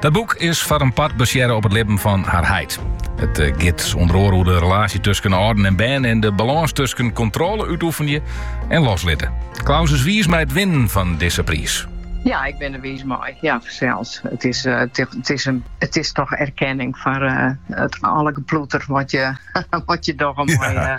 Dat boek is foar in part basearre op it libben fan har heit. It eh, giet onder oare oer de relaasje tusken âlden en bern en de balâns tusken kontrôle útoefenje en loslitte. Klaus is wiis mei it winnen fan dizze priis. Ja, ik bin der wiis mei. Ja, seker. It is, eh, it, is in, it is toch erkenning foar eh, it alle geploeter wat je, wat je toch in ja. moai,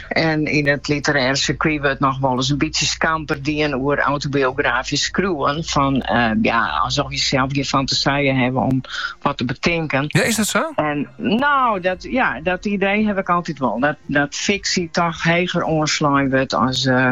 En yn it literêre sirkuit wurdt noch wolris in bytsje skamper dien oer autobiografysk skriuwen, fan ja, alsof je sels gjin fantasije hawwe om wat te betinken. Ja, is dat sa? En no, dat, ja, dat idee haw ik altyd wol. Dat, dat fiksje toch heger oanslein wurdt as. Uh,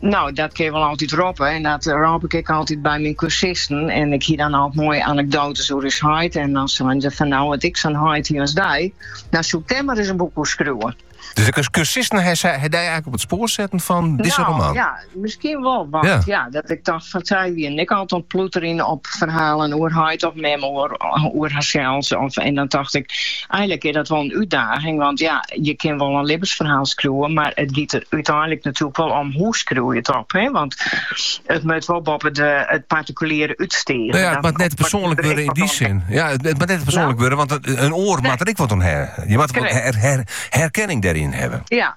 No, dat kin je wol altyd roppe en dat rôp ik ek altyd by myn kursisten. En ik hie dan al moaie anekdoates oer ús heit en dan seinen se fan, no at ik sa'n heit hie as dy, no soe ik dêr mar ris in boek oer skriuwe. Dus de kursisten ha dy eigenlik op it spoar setten fan dizze no, roman? Ja, miskien wol. Want ja. dat ik tocht fan sy wiene altyd oan 't ploeterjen op ferhalen oer heit of mem oer, oer harsels. Of, en dan tocht ik, Eigenlik is dat wol in útdaging, want ja, je kin wol in libbensferhaal skriuwen, mar it giet der úteinlik natuerlik wol om hoe skriuw je it op. Hè? Want it moat wol boppe de, it particuliere útstige. No ja, it moat net persoanlik wurde yn dy sin. Ja, it, it moat net persoanlik no. wurde, want in oar nee. moat der ek wat oan hawwe. Je moatte her, her, herkenning dêryn hawwe. Ja,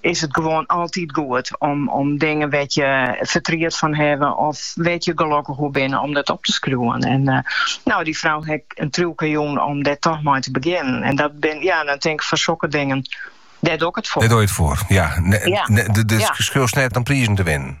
is it gewoan altyd goed om dingen wêr't je fertriet fan hawwe of wêr't je gelokkich oer binne, om dat op te skriuwen. En eh, nou, dy frou hek in triuwke jûn om dêr toch mei te begjinnen. En dat bin, ja, dan tink ik fan sokke dingen, dêr doe ik it foar. Dêr doe je it foar, ja. Ne, Ja. ne- de- dus Ja. skriuwst net om prizen te winnen.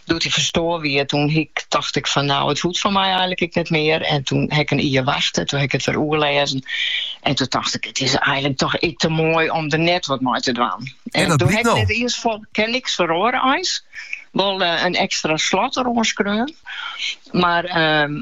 Doe't hy ferstoar wie, toen hiek, tocht ik fan, nou, it hoecht fan my eilek ek net mear. En toen ha ik in jier wachte, toen ha ik it wer oerlêzen. En toen tocht ik, it is eilek toch ek te moai om der net wat mei te dwaan. En, en toen ha ik no. net iens fan, ken niks feroare eins. Wol uh, in ekstra slot deroan skreaun. Mar... Uh,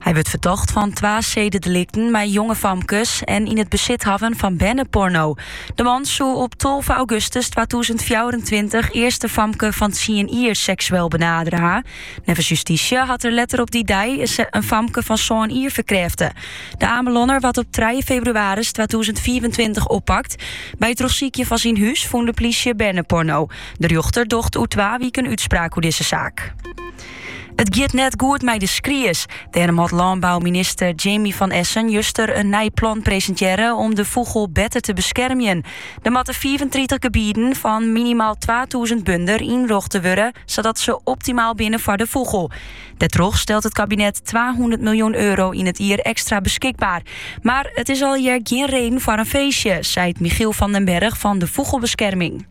Hy wurdt fertocht fan twa sededelikten mei jonge famkes en yn it besit hawwen fan berneporno. De man soe op 12 augustus 2024 earst in famke fan tsien jier seksueel benadere ha. Neffens justysje hat er letter op dy dei in famke fan sân jier ferkrêfte. De Amelonner waard op 3 febrewaris 2025 oppakt. By it trochsykjen fan syn hûs fûn de plysje berneporno. De rjochter docht oer twa wiken útspraak oer dizze saak. It giet net goed mei de skries. Dêrom hat lânbouminister Jaimi van Essen juster in nij plan presintearre om de fûgel better te beskermjen. Der moatte 35 gebieden fan minimaal 2000 bunder ynrochte wurde, sadat se optimaal binne foar de fûgel. Dêrtroch stelt it kabinet 200 miljoen euro yn it jier ekstra beskikber. Mar it is alhiel gjin reden foar in feestje, seit Michiel van den Berg fan de Vogelbescherming.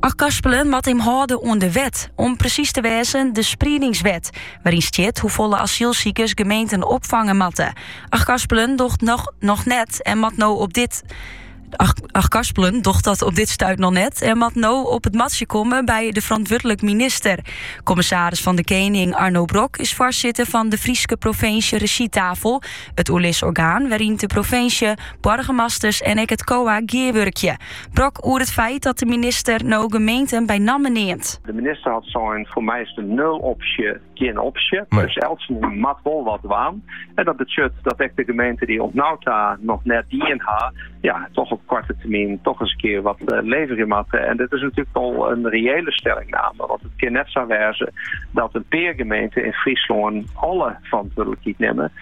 Achtkarspelen moat him hâlde oan de wet, om presys te wêzen de spriedingswet, wêryn stiet hoefolle asylsikers gemeenten opfange moatte. Achtkarspelen docht dat op dit stuit noch net en moat no op it matsje komme by de ferantwurdlik minister. Kommissaris fan de Kening Arno Brok is foarsitter fan de Fryske Provinsje Rezjytafel, it oerlisorgaan wêryn de provinsje, boargemasters en ek it COA gearwurkje. Brok oer it feit dat de minister no gemeenten by namme neamt. De minister hat sein, foar my is de nulopsje gjin opsje. Nee. Dus eltsenien moat wol wat dwaan. En dat betsjut dat ek de gemeenten dy't oant no ta noch net dien ha, ja, toch op koarte termyn toch ris in kear wat uh, eh, leverje moatte. En dit is natuerlik al in reële stellingname. Want it kin net sa wêze dat in pear gemeenten yn Fryslân alle ferantwurdlikheid nimme.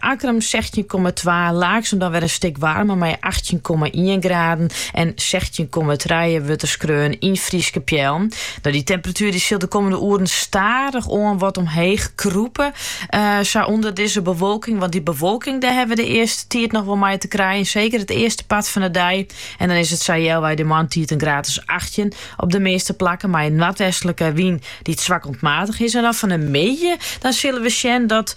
Akkrum sechstjin komma twa, Laaksum dan wer in stik waarmer mei achttjin komma ien graden en sechstjin komma trije wurdt der skreaun yn Fryske Peallen. No dy temperatuer dy sil de kommende oeren stadichoan wat omheech krûpe, sa ûnder dizze bewolking, want dy bewolking dêr hawwe we de earste tiid noch wol mei te krijen, seker it earste part fan de dei. En dan is it sa healwei de moarntiid in graad as achttjin op de measte plakken mei in noardwestlike wyn dy't swak oant matich is. En dan fan de middei dan sille we sjen dat